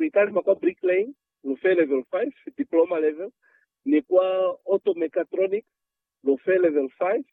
Kuikalima kwa bricklaying, lu fe Level 5, Diploma Level, ni kwa Auto Mechatronics, lu fe Level 5,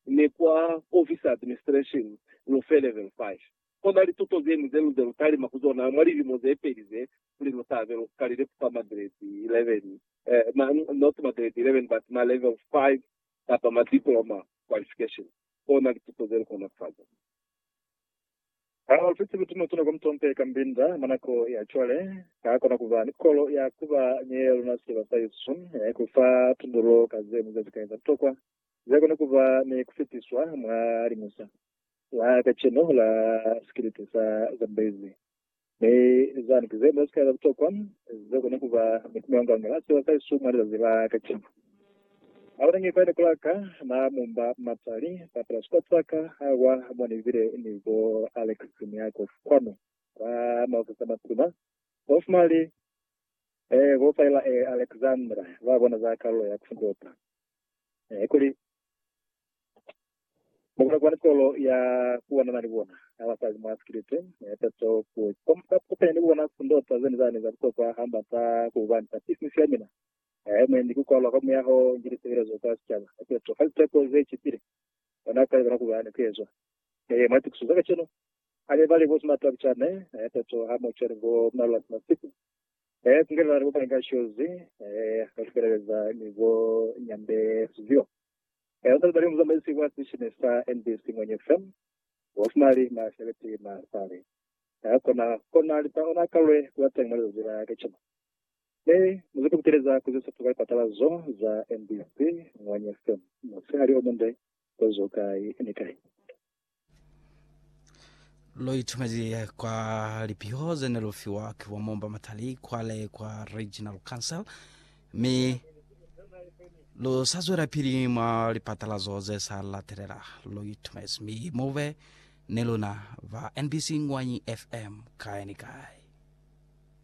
ni kwa Office Administration, lu fe Level 5. Kona lituto zeñwi ze lu ze lu talima ku zona mwa lilimo ze peli ze, kuli lu tabe lu kalile ku fa magredi 11, eh, ma, not magredi 11, but ma Level 5 kapa ma Diploma Qualification. Kona lituto ze lu kona ku fa zona. Ha u fiti lutuna tuna kwa mutompe ka mbinda mwa nako ya cwale, ha kona ku ba ni kolo ya ku ba nyeya luna siba sa Yesu, ya ku fa tundulo ka ze muzazi kai za butokwa ze kona ku ba ni ku fitiswa mwa liñusa la kacenu la sikiliti sa Zambezi. Mi zani ki zene sika za butokwa ze kona kuba ni kumeonganga la seba sa Yesu mwa lizazi la kacenu. Ha ona nge fani kula ka, na mumba mapsali ba telescope za ka ha kwa mo ni bile ni bo Alex ni Yakov kwanu kwa maofisi a matuna. Bo Fmali, ee, bo Faila, ee, Alexandra, ba bona za kalulo ya ku Ndopa Eh, kuli mukona kuba ni kolo ya kuwanana ni bona ha basali mwa sikiliti, eh, tato ku komba kupenya ni kubona sindota zeni zani za butokwa hamba ta kuhubani ta business ya mina. Eh, mwendi ku kwalwa kwa muyaho ni lisebelezo za sicaba. Eh, tato fa liteko ze cipile, bona kale bona kuba ni kuezwa. Eh, mwa litukiso za kacenu, hane bali bo simatwa bicane, eh, tato ha mu cweli bo mnalula simasiku, Ee, ku kenela ni bupaki ka shozi, ee, ka sipeleleza ni bo nyambe sizyo. Ee, uzali bali muzamaisi wa sishine sa NBC Ngwenye FM, bo Fumali na Sheleti Masale. Ee, kona, kona lipa ona kalwe kulateng mwa lizazi la kacenu. Mi, muzwepe kuteleza kuzisepa kwa lipatala zo za NBC Ngwenye FM, musihali omunde, kozo kai ni kai. lo itumezi kwa lipiho ze ne lu fiwa ke bo momba matali kwale kwa regional council mi lu sa zwela pili mwa lipatalazo ze sa latelela lo itumezi mi mube ne luna ba nbc ngwanyi fm kae ni kae